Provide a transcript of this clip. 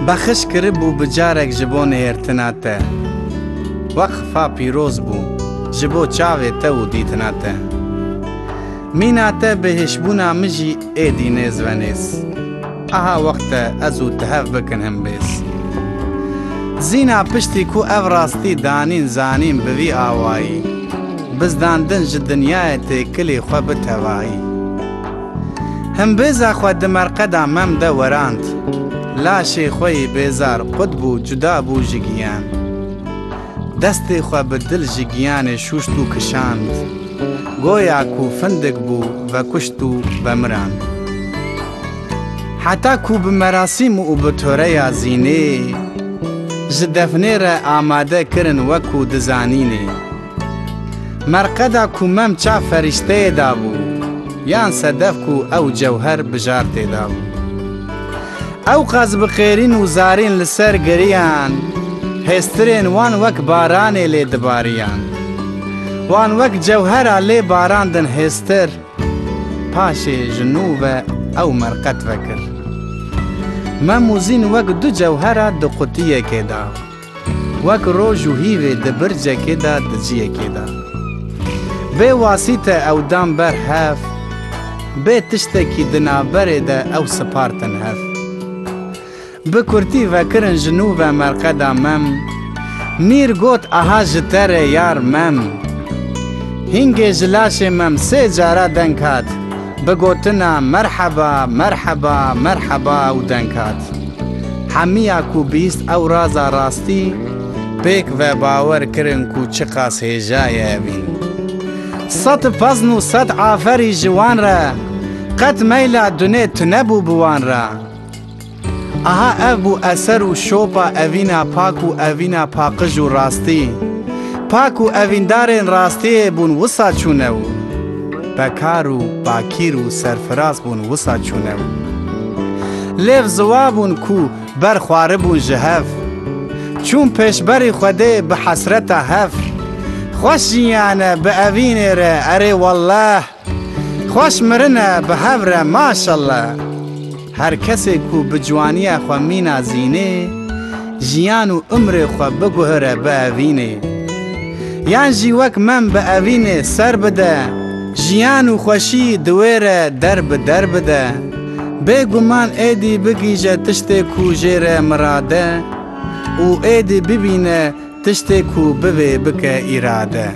Bexiş kiribû bi carek ji bo nihêrtina te. Weqfa pîroz bû ji bo çavê te û dîtina te. Mîna te bi hişbûna min jî êdî nêz ve nêz. Aha wext e ez û tu hev bikin hin bêz. Zîna piştî ku ev rastî danîn zanîn bi vî awayî, bizdandin ji dinyayê têkilî xwe bi tevayî. Him bêza xwe di merqeda mem de werand. Laşê xwe yê bêzar qut bû cuda bû ji giyan. Destê xwe bi dil ji giyanê şûşt û kişand. Goya ku findik bû vekuşt û vemirand. Heta ku bi merasîm û bi toreya zînê ji defnê re amade kirin wek ku dizanînê. Merqeda ku mem ça ferîşteyê dabû, yan sedef ku ew cewher bijartê dabû. Ew qas bi qêrîn û zarîn li ser giriyan, hêstirên wan wek baranê lê dibariyan. Wan wek cewhera lê barandin hêstir. Paşê ji nû ve ew merqet vekir. Mem û Zîn wek du cewhera di qutiyekê da. Wek roj û hîvê di bircekê de di ciyekê de. Bê wasîte ew dan ber hev, bê tiştekî di navberê de ew sipartin hev. Bi kurtî vekirin ji nû ve merqeda mem, Mîr got aha ji te re yar mem. Hîngê ji laşê mem sê cara deng hat, Bi gotina Merheba, merheba, merheba ew deng hat. Hemiya ku bîst ew raza rastî, pêk ve bawer kirin ku çiqas hêja ye evîn. Sed fezn û sed aferî ji wan re, qet meyla dunê tunebû bi wan re. Aha ev bû eser û şopa evîna pak û evîna paqij û rastî. Pak û evîndarên rastiyê bûn wisa çûnew. Bekar û bakîr û serfiraz bûn wisa çûnew. Lêv ziwa bûn ku ber xwaribûn ji hev. Çûn pêşberî Xwedê bi hesreta hevr. Xweş jiyane bi evînê re erê welleh. Xweş mirin e bi hev re maşallah. Her kesê ku bi ciwaniya xwe mîna zînê, jiyan û umrê xwe biguhire bi evînê. Yan jî wek mem bi evînê ser bide, jiyan û xweşî di wê re der bi der bide. Bê guman êdî bigihîje tiştê ku jê re mirade û êdî bibîne tiştê ku bivê bike îrade.